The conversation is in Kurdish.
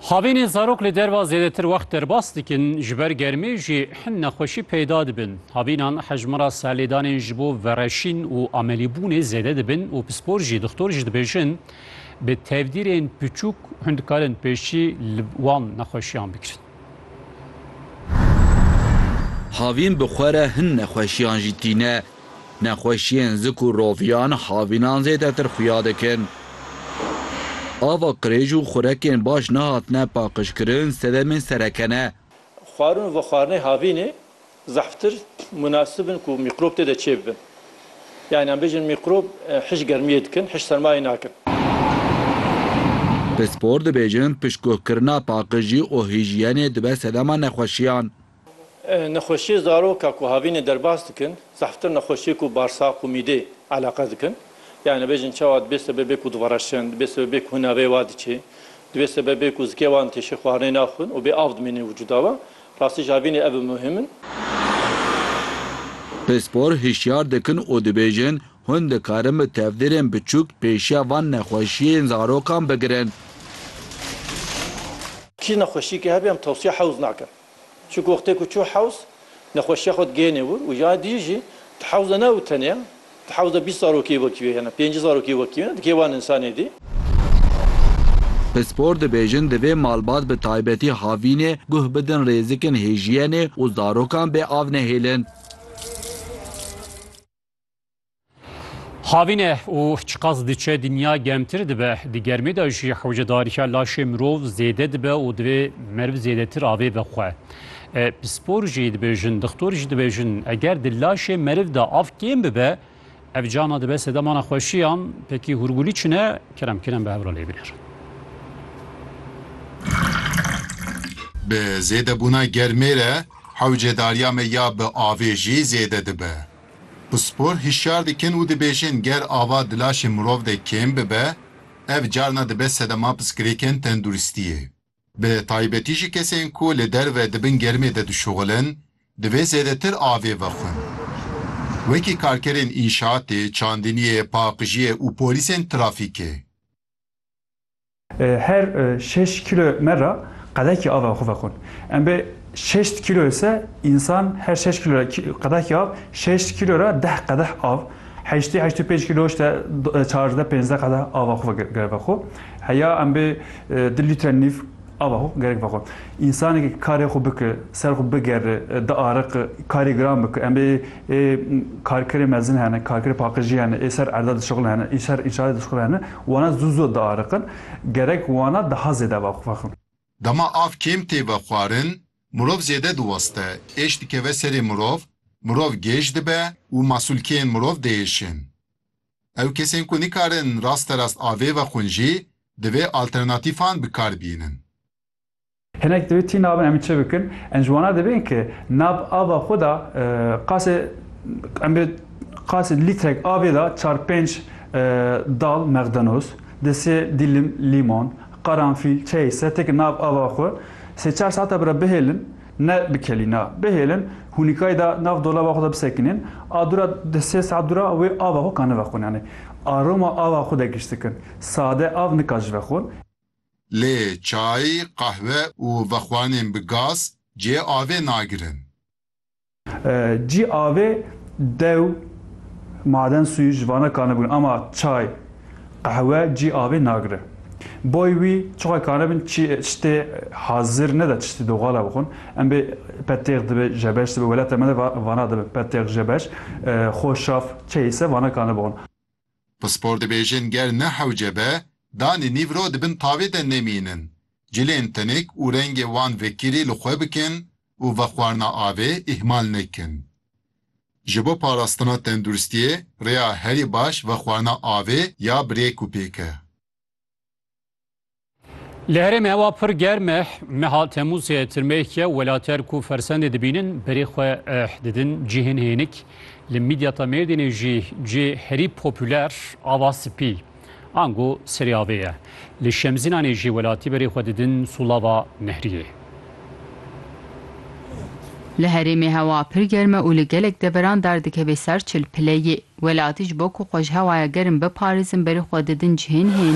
Xavînên zarok li derva zêdetir wext derbas dikin, ji ber germê jî hin nexweşî peyda dibin. Havînan hejmara serlêdanên ji bo vereşîn û amelîbûnê zêde dibin û pispor jî dixtor jî dibêjin bi tevdîrên piçûk hûn dikarin pêşî li wan nexweşiyan bigirin. Havîn bi xwe re hin nexweşiyan jî tîne. Nexweşiyên zik û roviyan havînan zêdetir xuya dikin. Ava qirêj û xurekên baş nehatine paqijkirin sedemên sereke ne. Xwarin û vexwarinê havînê zehftir munasib in ku mîqrob tê de çêbibin. Yanî em bêjin mîqrob hiş germiyê dikin, hiş sermayê nakin. Pispor dibêjin piştguhkirina paqijî û hîjiyenê dibe sedema nexweşiyan. Nexweşiyê zaroka ku havînê derbas dikin zehftir nexweşiyê ku barsaq û mîdê eleqe dikin. Yanî dibêjin çawa dibê sebebê ku divereşin, dibê sebebê ku hunaveyê wa diçê, dibê sebebê ku zikê wan têşê xwarinê naxwin û bê av dimînin vücuda we. Rastî ji havînê ev bi muhim in. Pispor hişyar dikin û dibêjin hûn dikarin bi tevdîrên biçûk pêşiya van nexweşiyên zarokan bigirin. Kî nexweşiyekê hebe em tewsiya hewz nakin. Çi goxtê ku çû hewz, nexweşiya xwe digihêne wir û ya dijî jî di hewz de ne û tenê di hewz de bîst zarokê wekî wê hene, pêncî zarokê wekî wê hene digihê wan însanê dî. Pispor dibêjin divê malbat bi taybetî havînê guh bidin rêzikên hêjiyenê û zarokan bê av nehêlin. Havîne û çiqas diçe dinya gemtir dibe di germê de jî hewcedarîya laşê mirov zêde dibe û divê meriv zêdetir avê bi xwe. Pispor jî dibêjin, dixtor jî dibêjin eger di laşê meriv de av kêm bibe ev cana dibe sedema nexweşiyan pekî hûrgulî çine kerem kirin bi hevra lê binêr. Bi zêdebûna germê re hewcedariya me ya bi avê jî zêde dibe. Pispor hişyar dikin û dibêjin ger ava di laşê mirov de kêm bibe, ev carna dibe sedema piskirêkên tenduristiyê. Bi taybetî jî kesên ku li derve di bin germê de dişuxulin, divê zêdetir avê vexwin. Wekî karkerên înşaatê, çandiniyê, paqijiyê û polîsên trafîkê. Her şeş kîlo me ra qedekî ava xwe vexwin. Em bê şeşt kîlo ise însan her şeş kîlo ra qedekî av, şeşt kîlo ra deh qedeh av, heştî heşt û pênc kîlo işte çardeh pênzdeh qedeh ava xwe gerek vexwe. Heya em bê du lître nîv ava xwe gerek vexwe. Însanekî karê xwe bike, ser xwe bigere, diariqe, karê giran bike. Em bê ê karkerê mezin hene, karkerê paqijî hene, ê ser erda dişixulin hene, ê ser înşaatê dişixulin hene Wana zû zû diariqin. Gerek wana daha zêde vexwixin. Dema av kêm tê vexwarin, mirov zêde diweste, êş dikeve serê mirov, mirov gêj dibe û masûlkeyên mirov diêşin. Ew kesên ku nikarin rasterast avê vexwin jî divê alternatîfan bi kar bînin. Hinek divê tî nabin em ê çi bikin? Em ji wana dibên ki nab ava xwe da qasê em bê qasê lîtrek avê da çar pênc dal mexdenoz, di sê dîlim lîmon, qaranfîl, çeyê setê ki nab ava xwe sê çar saeta bi re bihêlin, ne bi kelî na, bihêlin hûnîkayê da nav dolaba xwe da bisekinên, a dûra di sê saet dûra wê ava xwe ka nivexwin yanî aroma ava xwe de giş dikin. Sade av nika ji vexwin. Lê çay, qehwe û vexwanên bi gaz cihê avê nagirin. Cî avê dew, maden sûyî ji vana kane bûn ama çay, qehwe cî avê nagire. Boy wî çiqas kane bin çi çitê hazir nede çitê doxala bixwin. Em bê petêx dibe jebeş dibe welata me de vana dibin petêx jebeş xo şaf çeyî se vana kane bixwin. Pispor dibêjin ger ne hewce be, danê nîv ro di bin tavê de nemînin. Cilên tinik û rengê wan vekirî li xwe bikin û vexwarina avê îhmal nekin. Ji bo parastina tenduristiyê rêya herî baş vexwarina avê ya bi rêk û pêk e. Li herêmê hewa pir germ e. Meha Temûzê tirmeyek ye welater ku fersendê dibînin berê xwe eh, didin cihên hênik. Li mîdyata Mêrdînê jî cihê herî popûler ava spî, ango serê avê ye. Li Şemzînanê jî welatî berê xwe didin sûlava nehriyê. Li herêmê hewa pir germ e û li gelek deveran dar dikeve ser çil pileyê. Welatî ji bo ku xwe ji hewaya germ biparêzin berê xwe didin cihên hênik.